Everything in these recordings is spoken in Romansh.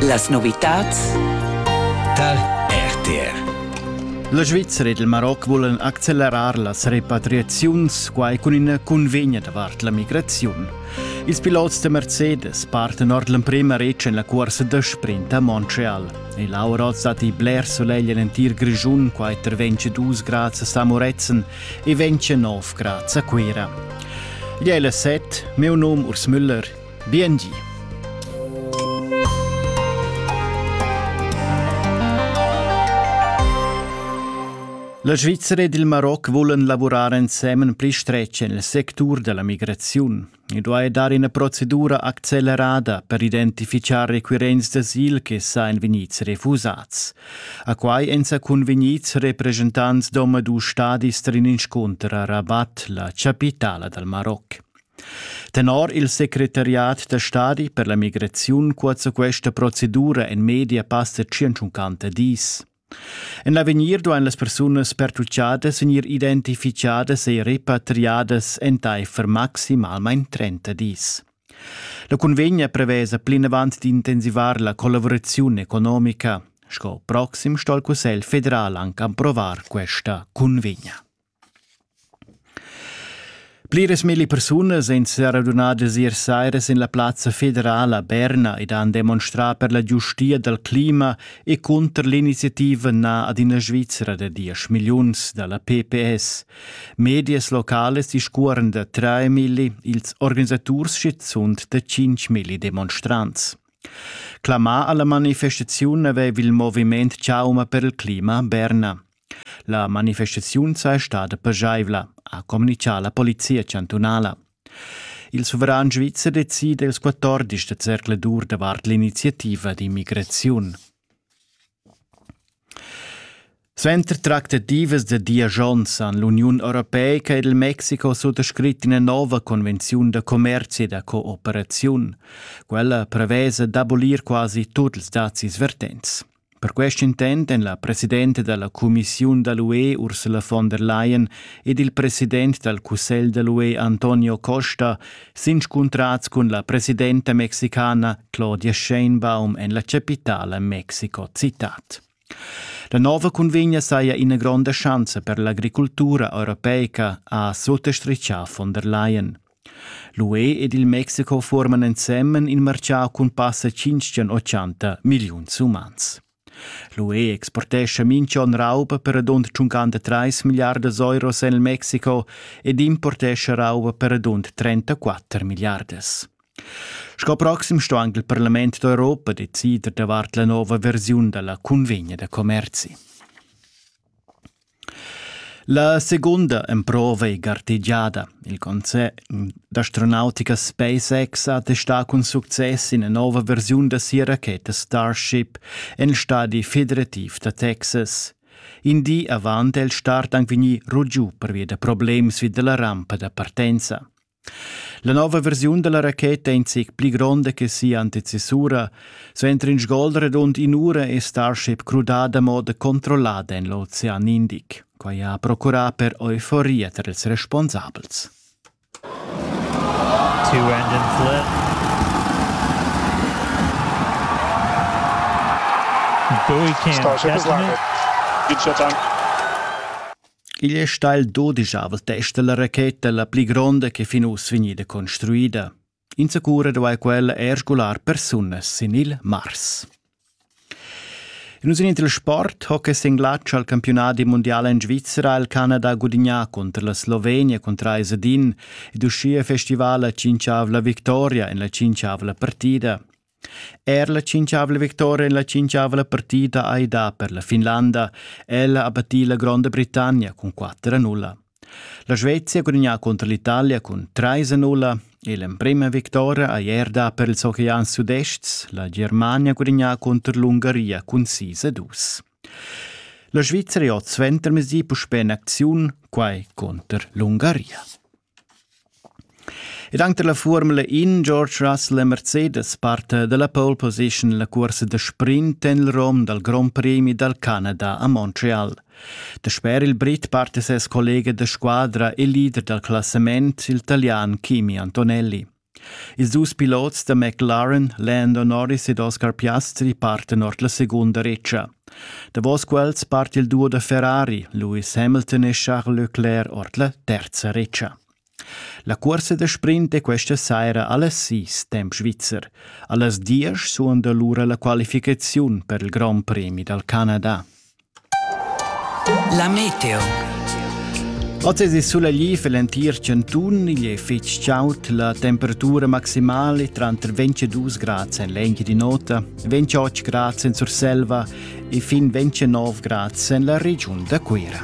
Las novitads tar RTR. La Svizzera ed il Maroc vulan accelerar las repatriaziuns, quai cun ina cunvegna davart la migraziun. Ils pilots da Mercedes partan ord l'emprema retg en la cursa da sprint a Montreal. E l'aura oz datti bler solegl en l'entir Grischun, quai intervegn dus grads a Samoretzen e ventg nov grads a Cuira. Igl è la set, meu num Urs Müller, Biengi. La Svizzera ed il Maroc vulan lavurar ensemen pli stretg en il sectur da la migraziun. I duai dar ina procedura accelerada per identifichar requirents d'asil che sa en vegnids refusads. A quai èn sa convegnids representants d'omadus stadis trin inscunter a Rabat, la chapitala dal Maroc. Tenor il secretariat da stadi per la migraziun cuozza questa procedura en media passa 150 dis. En l'avegnir duain las persunas pertutgadas vegnir identificadas e repatriadas entaifer maximalmain 30 dis. La cunvegna prevesa plinavant d'intensivar la collaboraziun economica. Sco proxim sto il Cussegl federal anche approvar questa cunvegna. Pliras milli persunas ein seradunadas ier saira sin la plazza federala a Berna ed han demonstrà per la giustia dal clima e cunter l'iniziativa na ad ina Svizra da diesch milliuns dalla PPS. Medias localas discuoran da trais milli, ils organisaturs schizunt da cinq milli demonstrants. Clamà alla manifestaziun aveva il moviment Chauma per il clima a Berna. La manifestaziun sei stada pageivla, ha communitgà la polizia chantunala. Il suveran svizzer decida ils 14 da zercladur davart l'iniziativa d'immigraziun. Suenter tractativas da diagions han l'Uniun Europeica ed il Mexico suttascrit ina nova convenziun da commerci e da cooperaziun. Quella prevesa d'abolir quasi tuts dazis vertents. Per quest intent èn la presidenta da la cumissiun da l'UE Ursula von der Leyen ed il president dal cussegl da l'UE Antonio Costa s'inscuntrads cun la presidenta mexicana Claudia Sheinbaum en la chapitala Mexico citat. La nova cunvegna saja ina gronda schanza per l'agricultura europeica, ha suttostrichà von der Leyen. L'UE ed il Mexico fuorman ensemen il marchau cun passa tschintschen ochanta milliuns umans. L'UE exportescha minch'on rauba per radund 53 milliardas euros en il Mexico ed importescha rauba per radund 34 milliardas. Sco proxim sto anche il Parlament d'Europa decider davart la nuova versiun della convegna da commerzi. La seguonda emprova ei gartegiada. Il concern d'astronautica SpaceX ha testà cun success ina nova versiun da sia racheta Starship en stadi federativ da Texas. In di avant è il start anc vegnì rugiu pervia da problems vi da la rampa da partenza. La nova versiun dalla racheta è in zic pli gronda che sia antecessura. Suenter in sgol redund in'ura è Starship crudada a moda controllada en l'ocean Indic. Quai ha procurà per euforia tar ils responsabels. Two engine flip. Bowie can Starship is landed. Good shot down. Igl è stà il dodischavl test da la racheta la pli gronda ch'è fin uss vegnida construida. Insacura duai quella er sgular persunas sin il Mars. In usin il sport hockey sin glatsch al campionat mondial en Svizzera il Canada gudignà cunter la Slovenia cun trais ad in ed uschia festival la cinquavla victoria en la cinquavla partida. Er la tschintgavla victoria en la tschintgavla partida hai dà per la Finlanda. Ella ha battì la Gronda Britannia cun 4 a 0. La Svezia ha gudagnà contro l'Italia cun 3 a 0 e l'emprima vittoria ha er dà per ils Oceans Sudest. La Germania ha gudagnà contro l'Ungaria cun 6 a 2. La Svizzera ha suentermesdi puspè in acziun, quai contro l'Ungaria. Ed anche la Formula In George Russell e Mercedes parta dalla pole position la cursa da sprint en il rom dal Grand Prix dal Canada a Montreal. Dasper il Brit parta ses collega da squadra e leader dal classament, il talian Kimi Antonelli. Ils dus pilots da McLaren, Lando Norris ed Oscar Piastri partan ord la secunda retscha. Davos quels part il duo da Ferrari, Lewis Hamilton e Charles Leclerc ord la terza retscha. La cursa da sprint è questa saira allas sis temp svizzer. Allas diesch suonda lura la qualificaziun per il Grand Premi dal Canada. La meteo. Oz è sulegli für l'entir cantun, igl è fitg chaud, la temperatura maximale tranter 22 grad en l'engi di nota, 28 grad en Surselva e fin 29 grad en la regiun da Cuira.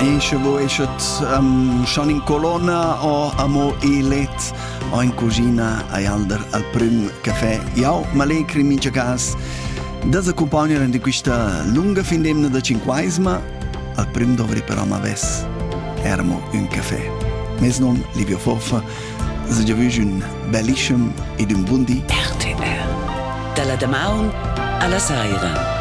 Ische wo eschet um, schon in colonna o amo elet o in cucina ai alder al prüm caffè. Jau m'allegri mincha cas da accompagnar in questa lunga findemna da cinquaisma. Al prüm dovri però ma ves ermo un caffè. Mes non Livio Foffa Se giavüsch ün bellischem ed ün bun di. RTR. Dalla damaun alla saira.